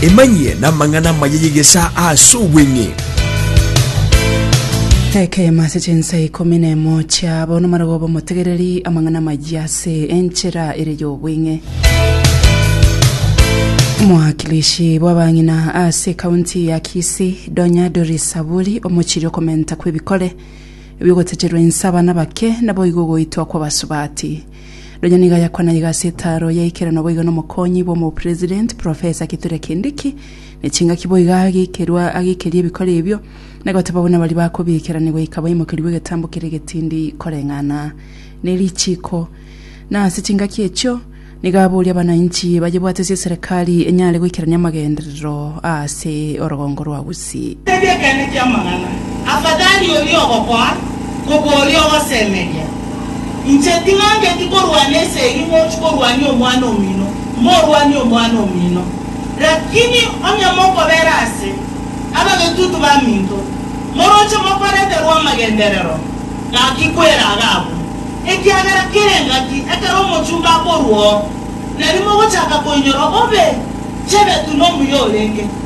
Emanyie namang'ana amaya y'egesaa ase obweng'e. Ekenyumo ase chinsa ikomi na emo chia bono marogo b'omotegereri amang'ana amayia ase enchera ere y'obweng'e. Mwakilishi bw'abang'ina ase ekaunti ya Kisii, Donya Doris Saburi omochirie okomenta kw'ebikore ebi'ogotecherwa inse abana bake naboigo ogoitwa kw'abasubati. Nonya nigo ayakwana iga ase etaaro ya ikerano boigo n'omokonyi bw'omopresident, Professor Kithure Kindiki, ne chingaki boigo agekerwa agekeria ebikore ebio, na goteba buna baria bakobiikerani goika baimokerigwe egetambo keria egetindi koreng'ana ne richiiko. Na ase chingaki echio, nigo aboria abanainchi bayebwate ase eserekari enyare goikerania amagenderero aase orogongo rwa Gati. Tebia ekeene ki'amang'ana, afadhali oria ogokoa kobua oria ogosemeria. Inche ting'angeti korwana ase eyio mochi korwania omwana omino, morwanie omwana omino. Rakini onye mokobera ase abagetutu baminto, moroche mokoreterwa amagenderero, gaki kwera aga abwo, ekiagera kere engaki ekero omochumba akorua oo, nari mogochaka koinyora obe chebetu nomuya orenge.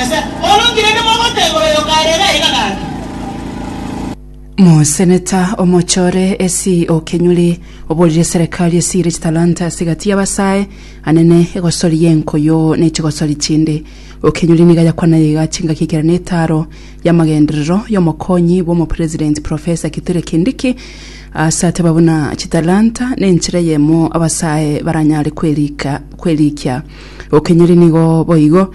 Ase bono nki rende mogoteeba oyo okaarere aiga gati? Moseneta omochore esi o Kenyuri oborire serikali esire chitalanta ase gati y'abasae anene egosori y'enkoyo ne chigosori chinde. O Kenyuri niga yakwanire iga chingaki ekero ne etaro y'amagenderero y'omokonyi bw'omopresident Professor Kithure Kindiki ase ateba buna chitalanta nenchera eyemo abasae baranyare kwerikia. O Kenyuri nigo boigo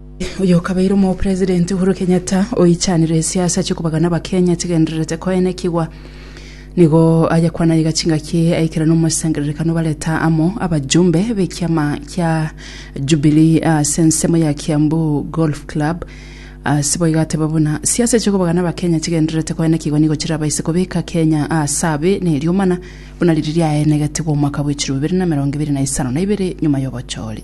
Oyokabeire omopresident Uhuru Kenyatta oichanire esiasa chikobagana abakenya chigendererete koenekigwa nigo aye kwana iga chingaki aikera nomosangererekano bareta amo abajumbe bekiama kia Jubilee ase ensemo ya Kiambu Golf Club ase boigo ateba buna siasa chikobagana abakenya chigendererete koenekigwa nigo chirabaise kobeka Kenya ase abe na eriomana buna riri riaenegetigwe omwaka bwe chirobere na emerongo ebere na isano na ibere nyuma yobochori